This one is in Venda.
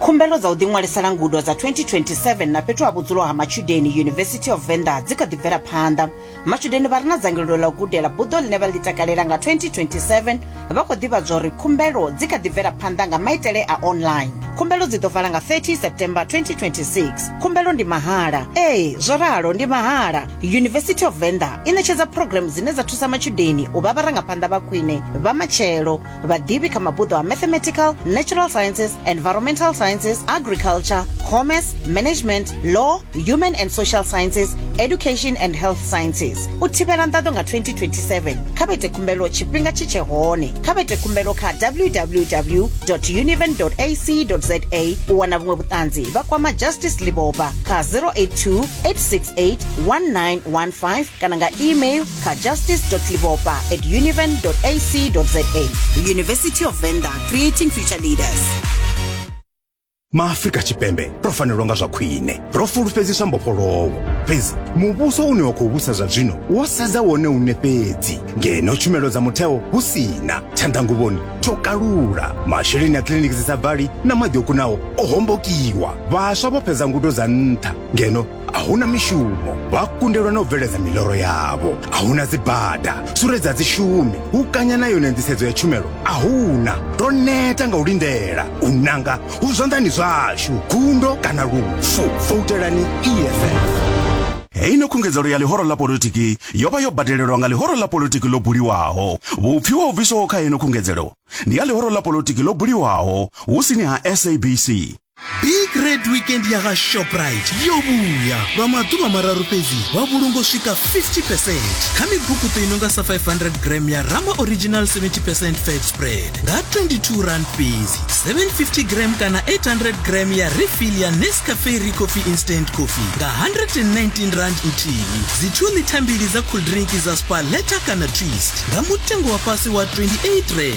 Khumbelo dza u ḓiṅwalisela ngudo dza 2027 na fhethu ha vhudzulo ha matshudeni University of Venda dzi kha ḓi bvela phanḓa. Matshudeni vha re na dzangalelo ḽa u gudela buḓo ḽine vha ḽi takalela nga 2027 vha khou ḓivhadzwa uri khumbelo dzi kha ḓi bvela phanḓa nga maitele a online. Khumbelo dzi ḓo vala nga 30 September 2026. Khumbelo ndi mahala. Ee, zwo ralo ndi mahala. University of Venda i ṋetshedza program dzine dza thusa matshudeni u vha vharangaphanḓa vha khwine vha matshelo. vhaḓivhi kha mabuḓo a mathematical natural sciences environmental sciences agriculture commerce management law human and social sciences education and health sciences u thivhela nḓaḓo nga 2027 kha vha ite khumbelo tshifhinga tshi tshe hone kha vha ite khumbelo kha www univen ac za u wana vhuṅwe vhuṱanzi vha kwama justice liboba kha 082 868 1915 kana nga email kha justice.livopa at univen.ac.za The University of Venda, creating future leaders. maafrika tshipembe ro fanelwa nga zwa khwine ro fulufhedziswa mbofholowo fhedzi muvhuso une wa khou vhusa zwa zwino wo sedza wone une fhedzi ngeno tshumelo dza mutheo hu si na tshanḓanguvhoni tsho kalula masheleni a kiliniki dzi sa bvali na maḓi o kunaho o hombokiwa vhaswa vho fhedza ngudo dza nṱha ngeno a huna mishumo vha kundelwa na u bveledza miloro yavho a huna dzibada suredza dzishumi u kanya na yone nḓisedzo ya tshumelo a huna ro neta nga u lindela u nanga hu zwanḓani zwashu gundo kana lufu foutelani eff heino khungedzelo ya ḽihoro ḽa politiki yo vha yo badelelwa nga ḽihoro ḽa politiki ḽo buliwaho vhupfi wa u bviswaho kha heino khungedzelo ndi ya ḽihoro ḽa politiki ḽo buliwaho hu sini ha sabc big red weekend ya ga shoprite yo vhuya lwa maḓuvha mararu fhedzi wa vhulungo swika 50 percent kha mibukuṱo i no nga sa 500 gram ya rama original 70 percent fat spread nga 22 rand fhedzi 750 gram kana 800 gram ya refill ya nescafe re coffee instant coffee nga 119 rand nthihi dzi 2 lita mbili dza cool drink dza spa leta kana twist nga mutengo wa fhasi wa 28 rand